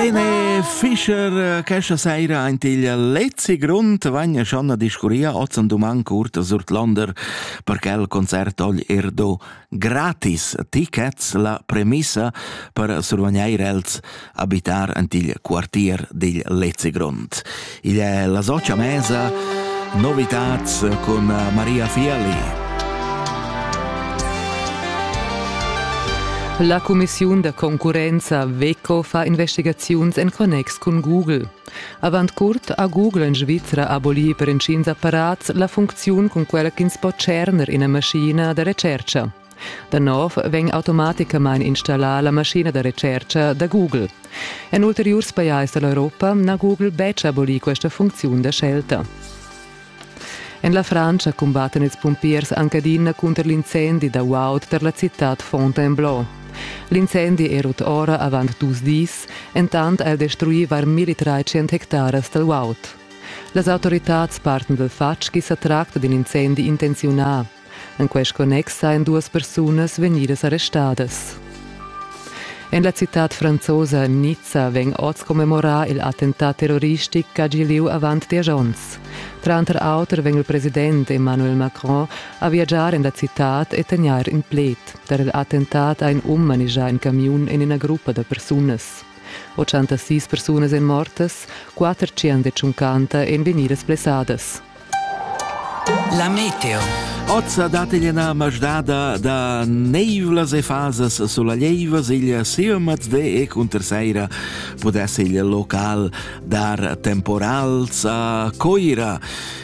Martine Fischer, äh, questa sera ein il letzte Grund, vegna schon a discurria oz an doman Kurt Surtlander per che il concert ogl er do gratis tickets la premissa per survegneir els abitar ant il quartier dil letzte Grund. Id è la socia mesa Novitats cun Maria Fiali. La cumissiun da concurrenza Veco fa investigaziuns en connex cun Google. Avant curt ha Google en Svizra abolì per intgins apparats la funcziun cun quella ch'ins po tscherner ina maschina da retschertga. Da nov vegn automaticamain installà la maschina da retschertga da Google. En ulteriurs pajais da l'Europa n'ha Google betg abolì questa funcziun da scelta. En la Frantscha cumbattan ils pumpiers anc adina cunter l'incendi da guaud tar la citad Fontainebleau. L'incendi è rut ora avant dus dis, entant ha el destruì var 1300 hectaras dal guaud. Las autoritads parten dal fatg ch'i sa tracta d'in incendi intenziunà. En quest connex ein duas persunas vegnidas arrestadas. En la citad franzosa Nizza vegn oz commemorar il attentat terroristic ch'ha gì lieu avant diesch onns. Tranter auter vegn il president Emmanuel Macron a viagiar en la citad e tegnair in pled. Per il attentat ha in um manegià in camiun en ina gruppa da persunas. 86 persunas èn mortas, 400 e 50 èn vegnidas blessadas. La meteo. Ozza dat igl ena masdada da neivlas e fasas soleglieivas, igl seomat de e cunter seira podess igl local dar temporals a coira.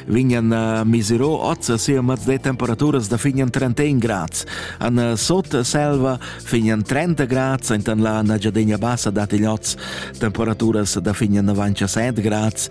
Vignan eh, misero ozza seomat de temperaturas da fignan 31 grads. An eh, sot selva fignan 30 grads, entan la nagiadegna bassa dat igl oz temperaturas da fignan 97 grads